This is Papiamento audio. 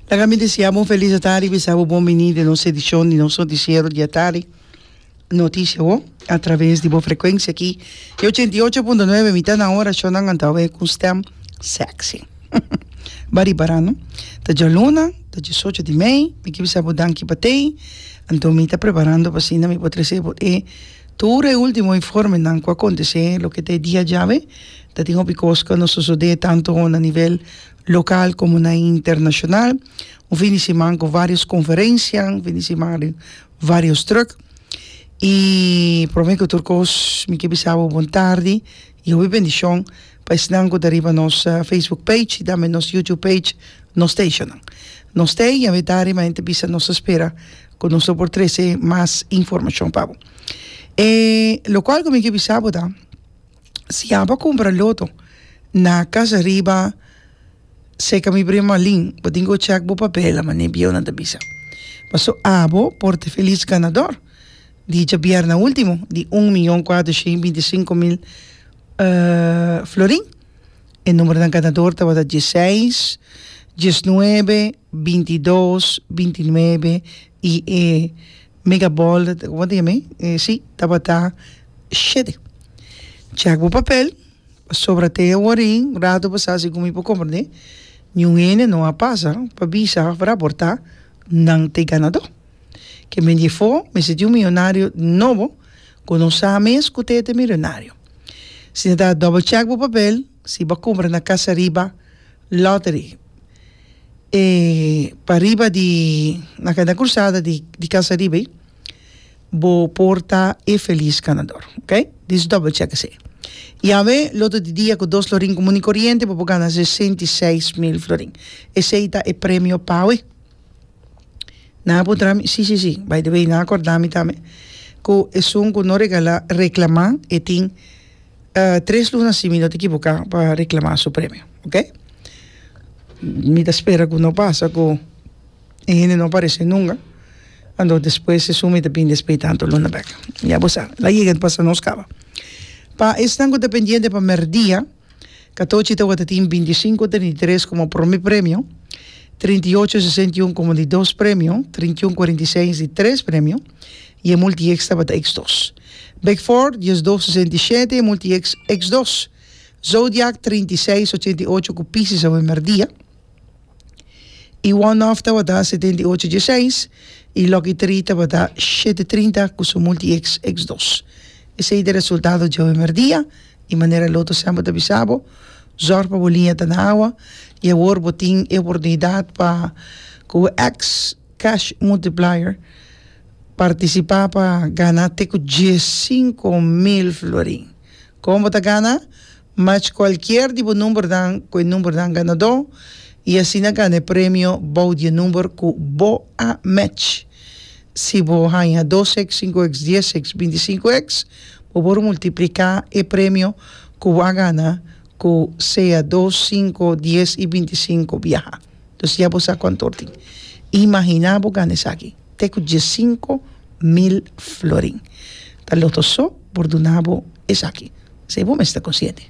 Laga mi deseá bo un felis de tardi bisa bo bon bini den nos edishon di nos notisiero di e tardi Noticia Awor! a traves di bo frekuensia aki di ochenta i ocho punto nuebe mitad na ora shonnan a ta oe ku un stèm sèksi ba riba ra no ta djaluna ta disocho di mei mi ke bisa bo danki pa tei anto mi ta preparando pa asina mi por trese bo e tur e ultimo informenan ku a kontesé loke ta e dia djawe Ta tin hopi cos cu a no sosode tanto na nivel local como na internacional. Un fin di siman cu varios conferencia, un fin di siman di varios druk. Y prome cu tur cos mi ke bisa bo bon tardi y hopi bendicion pa esnan cu ta riba nos Facebook page y tambe nos YouTube page, nos stationnan. Nos stay y awe tardi mas ente bisa nos ta spera cu nos lo por trece mas informacion pa bo. E locual cu mi ke bisa bo ta. si a bo cumpra loto na casa riba seca mi prima lin bo tin cu check bo papel mane bieu nan ta bisa paso a bo por te feliz ganador di djabierna ultimo di un miyon cuater shen y binti sinco mil florin e numero ganador tabata dieseis, diesnuebe, bintidos, bintinuebe y e mega ball tabata shete. Chèk bo papel pasobra te awor in rato bo sa si ku mi por komprendé niun hende no a pasa pa bisa òf raportá nan ta e ganadó. Ke men di efo mester tin un miyonario nobo ku no sa mes ku te ta e milonario. Si nan ta dòbel chèk bo papel si bo a kumpra na Casa Riba Lottery e pariba di na kanta krusada di Casa Riba ei. Bo por ta e felis ganador. Ok? Dis double check esei. Y awe, loto di dia cu dos lorin comun y coriente, bo por gana sesenta y seis mil florin. Esei ta e premio pa awe. Nan a puntra mi, si, si, si. By the way, nan a corda mi tambe cu esun cu no regala, reclama, e tin tres luna, si mi no ta equivoca, pa reclama su premio. Ok? Mi ta spera cu no pasa cu. E hende no aparesé nunga, anto despues e sumi ta bin despé tantu luna bek. Ya bo sa, la yega ta pasa nos kaba. Pa esnan ku ta pendiente pa mèrdia, Katochi tabata tin binti sinku trinta i tres komo promé premio, trinta i ocho sesenta i un komo di dos premio, trinta i un kuarenta i seis di tres premio i e multieks tabata eks dos. Bekfòrt, dies dos sesenta i shete, e multieks eks dos. Zodiak, trinta i seis ochenta i ocho ku Pisis awe mèrdia. y one off tabata setenta y ocho dieseis y lucky three tabata shete trinta cu su multi x x dos esey ta e resultado djawe merdia y manera loto semper ta bisa bo zorg pa bo liña ta na awa y awor bo tin e oportunidad pa cu bo ex cash multiplier participa pa gana te cu diesinco mil florin con bo ta gana Mach kualkier di bo numbernan ku e numbernan ganadó i asina gana e premio bou di e number ku bo a mèch. Si bo haña dos èks, sinku èks, dies èks, binti sinku èks, bo por multipliká e premio ku bo a gana ku sea dos, sinku, dies i binti sinku biaha. Nos ya bo sa kontor tin. Imaginá bo gana esaki te ku diessinko mil florin. Ta loto so por duna bo esaki. Sei bo mes ta konsiente.